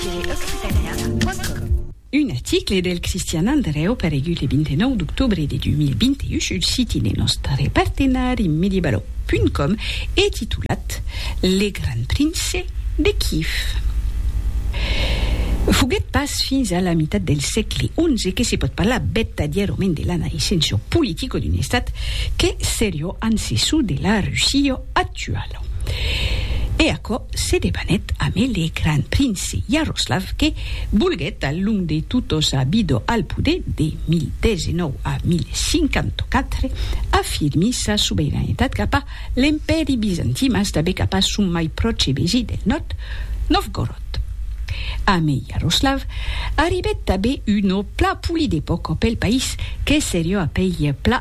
www.occitania.com Un article del Cristian Andreu paregut le 29 d'octobre de 2021 sul siti de nòstre partenari Medieballot.com e titulat Le Grand Prince de Kiev foguèt pas fins a la mitat del sègle xi que se pòt parlar vertadièrament de la naissença politica d'un estat qu'es seriós ancessor de la Russia actuala. E aquò se debanèt amé le gran prince Yaroslav que volguèt al long de totos a Bido al poder de 1019 a 1054 afirmi sa sobeiranetat cap a l'empèri bizantin mas tanbé cap a son mai pròche vesin del nòrd Novgorod. Amé Yaroslav arribèt tanbé un ò pla poli de pòc ò pel país que serió a pei pla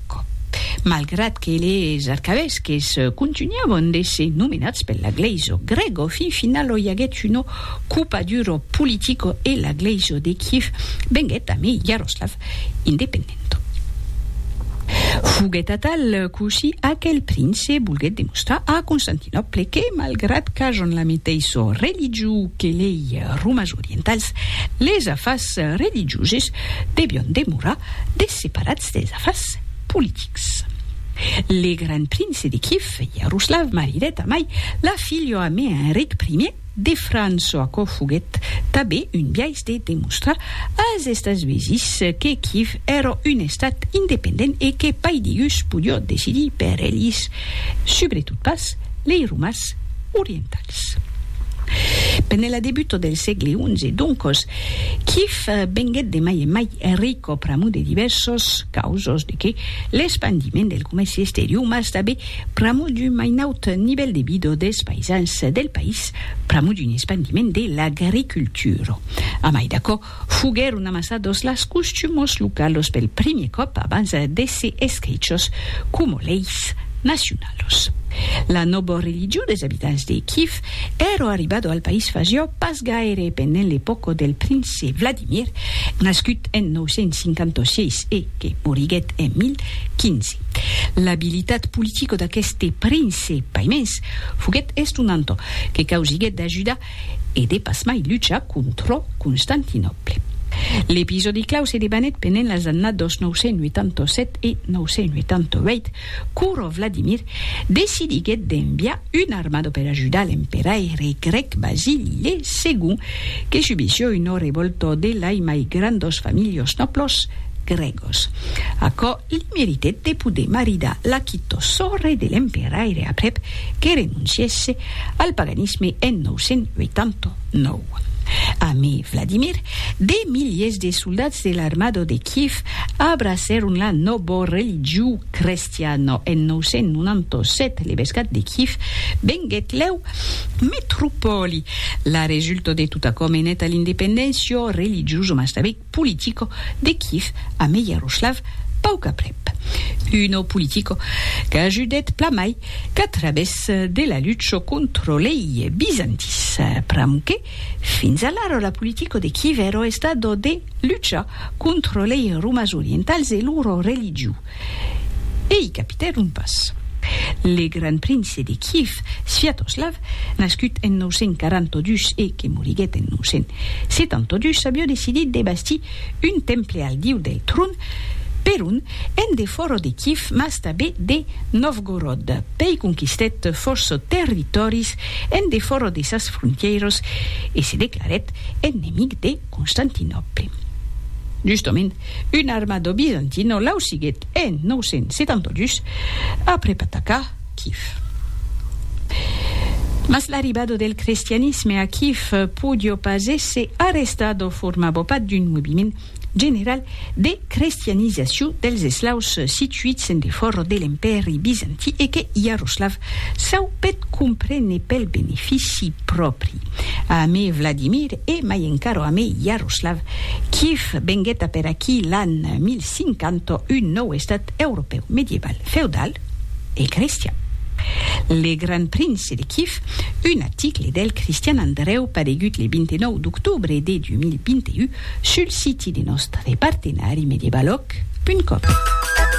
Quò, malgrat que les arcavesques contunhavan d'èsser nomenats per la glèisa grèga, fin finala i aguèt una copadura politica e la glèisa de Kiev venguèt amé Iaroslavl independent. Foguèt atal cossí aquel prince volguèt demostrar a Constantinòple que, malgrat qu'ajan la meteissa religió que lei romas orientals, les afars religioses devián demorar desseparats Des afars politics. Le grand prince de Kiev, Yaroslav, maridèt amai la filho a me Enric I de França, aquò foguèt tabé un biais de demostrar as Estats Uesis que Kiev èra un estat independent e que pas digus podió decidir per elhis, subretot pas lei romas orientals. Ps. Pene la debuto del sègle xi, doncos, Kiev venguèt de mai en mai rico pr'amor de divèrsos causos, de qué? l'espandiment del comèrci exterior, mas tanben pr'amor d'un mai naut nivèl de vida dels païsans del país, pr'amor d'un espandiment de l'agricultura. A mai d'aquò, Foguèron amassados las costumos localos pel primier còp abans d'èsser escrichos coma leis nacionalos. La nòba religion des abitants de Kyiv èra arribada al país fasiá pas gaire pendent l'epòca del prince Vladimir, nascut en 956 e que moriguèt en 1015. L'abilitat politica d'aqueste prince, paimens, foguèt estonanta, que causiguèt d'ajudar e de pas mai luchar contrò Constantinòple. L'episòdi clau se debanèt pendent las annados 987 e 988, quora Vladimir decidiguèt d'enviar una armada per ajudar l'emperaire grèc Basili le Segond, que subissió una revòlta de lai mai grandos familhos nòblos grègos. Aquò li meritèt de poder maridar la quitò sòrre de l'emperaire aprèp que renoncièsse Al paganisme en 989. Amé Vladimir, de miliers de soldats de l'armada de Kiev abracèron la nòva religió crestiana en 997. L'evescat de Kiev venguèt lèu metropòli. La resulta de tot aquò menèt a l'independéncia religiosa mas tanben Politico de Kiev a Meyaroslav paucaprèp. Uno Politico qu'ajudèt plamai qu'a travès de la lucho contro lei bizantis, pramque fins alara la Politico de Kiev èro estado de luchar contro lei Romas Orientals e loro religiu. e i capitèron pas. Le grand prince de Kiev, Sviatoslav, nascut en 942 e que moriguèt en 972, avió decidit de bastir un temple al diu del tron, Perun, en defòra de Kiev mas tanben de Novgorod. Pei conquistèt fòrça territòris en defòra de sas frontièras e se declarèt ennemic de Constantinòple. Justament, Un armado bizantin o lausiguèt en 972 aprèp atacar Kif. Mas l'arribado del crestianisme a Kif podió pas èsser arrestat o formavo pas d'un moviment general de crestianizacion dels eslaus situits en defòra de l'Empèri Bizantin e que Iaroslavl Çò peth comprene pel benefici pròpri. A amé Vladimir e mai encara amé Yaroslav, Kiev venguet a per aquí l'an 1050 un nòu estat europèu medieval, feudal e cristian. Le Gran Prince de Kiev, un aticle del Cristian Andrèu paregut le 29 d'octobre de 2021 sul siti de nòstre partenari medievalòg punt com.